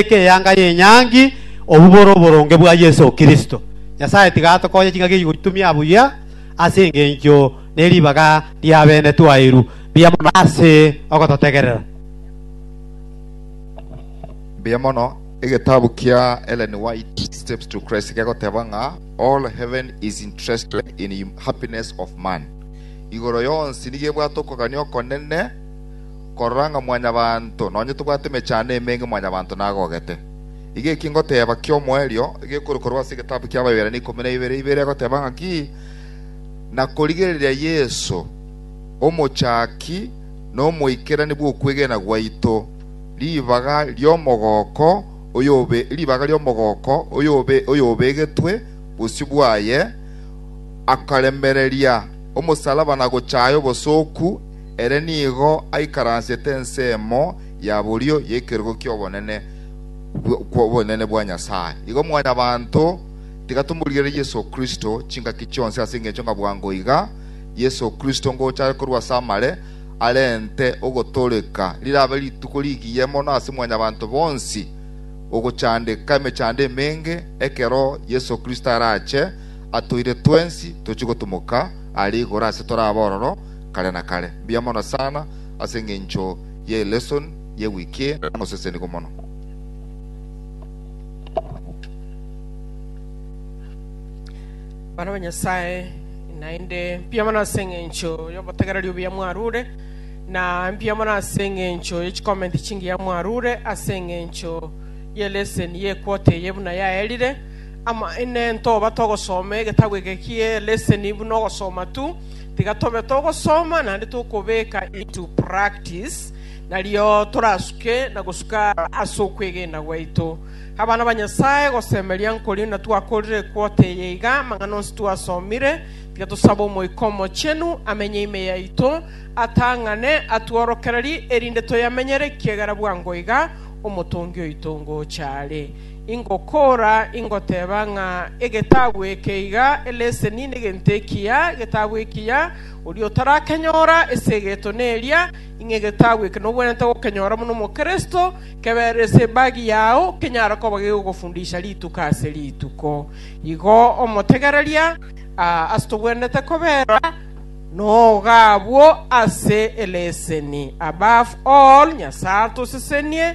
ekeanga y'enyangi obubore oboronge bwa Yeso Kristo. Nyasae tiga atokonye ching'aki echi gochitumia buya ase engencho ne ribaga ri'abene twairu mbuya mono ase ogototegerera. Mbuya mono. Egetabu kia Ellen White, Steps to Christ, kegoteba ng'a all heaven is interested in happiness of man. Igoro yonsi nigo ebwate okogania okonene. korora ng'a mwanyabanto nonye tobwate emechando emenge mwanyabanto nagogete. Iga eki ngoteeba ki'omoerio, iga ekori korwa ase egetabu ki'Abaebrania ikomi na ibere, ibere egoteba ng'aki, na korigereria Yeso, omochaki na omoikerani bw'okwegena gwaito, ribaga ri'omogooko oyobegetwe bosio bwaye, akaremereria omosalaba na gochaaya obosooku, Ere nigo aikaransete ensemo ya borio y'ekerogo ki'obonene kw'obonene bwa Nyasae. Igo Mwanyabaanto tiga tomorigerere Yeso Kristo chingaki chionsi ase engencho ng'a bwango iga Yeso Kristo ngocha are korwa ase amare arente ogotooreka rirabe rituko rigiya mono ase Mwanyabaanto bonsi ogochandeka emechando emenge ekero Yeso Kristo arache atoire twensi tochie gotumoka are igoro ase torabe ororo kare na kare. Mbuya mono sana ase engencho ye elesson ye week eye, namosesenigwe mono. Abana ba Nyasaye, naende mbuya mono ase engencho y'obotegereri obuya mwarure, na mbuya mono ase engencho ye chicomment chingiya mwarure ase engencho ye lesson ye equota eye buna yaerire. Amaene ntoba togosoma egetabu eke kie lesson buna ogosoma tu, Tiga tobe togosoma naende tokobeka into practice, nario torasuke na gosuka ase okwegena gwaito. Abana ba Nyasae, gosemeria nkorio natwakorire equote eye iga, amang'ana onsi twasomire, tiga tosabe Omoika Omochenu amenye ime yaito, atang'ane, atworokererie, erinde toyamenyere, ekiagera bwango iga Omotongi oito ngocha are. Ingokora, ingoteba ng'a egetabu eke iga eleseni negento ekiya, egetabu ekiya, oria otarakenyora ase egeto neria, ing'a egetabu eke nobwenerete gokenyora buna omokristo, keberere ase ebagi yao, kenyare koba gegogofundisha rituko ase rituko. Igo omotegereria aa ase tobwenerete kobera noga abwo ase eleseni. Above all, Nyasae atosesenie.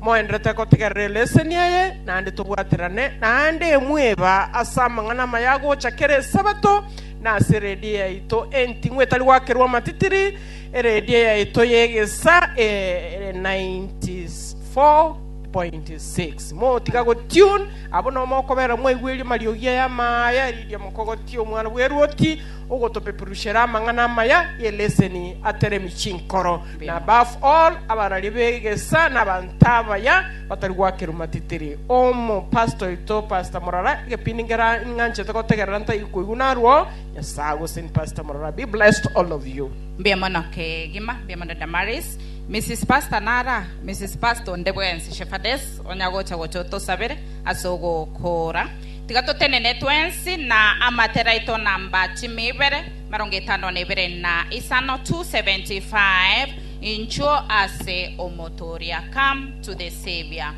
Moenderete gotigerera eleseni eye, naende tobwaterane naende mweba ase amang'ana amaya agocha kera Esabato, na ase eredio yaito enting'u etari gwakerwa amatitiri, eredio yaito y'egesa e 94.6. Motiga gotune, abwo nao mokobera mwaigweri amariogi aya amaya, eririo mokogotia Omwana bw'eruoti ogotopeperusera amang'ana amaya y'eleseni ateremi chinkoro. na above all abararia begesa na abanto abaya batari gwakerwa matitiri. Omo pastor oito pastor murara egepindi ngera nganchete gotegerera ntaiyo koigwa narwo nyasae agosen pastor murara be blessed all of you. Mbuya mono kegima, mbuya mono Damaris. Mrs. Pastor nara? Mrs. Pastor onde bwensi, Shepherdess, onya gocha gocha otosabere ase ogokora. Tiga totenene twensi na amatera aito namba chimi ibere. Marongo etano nebere na isano to seventy five inchuo ase omotooria come to the Saviour.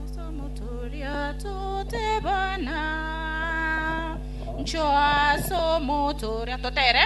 Ase omotooria totebana inchuo ase omotooria totere.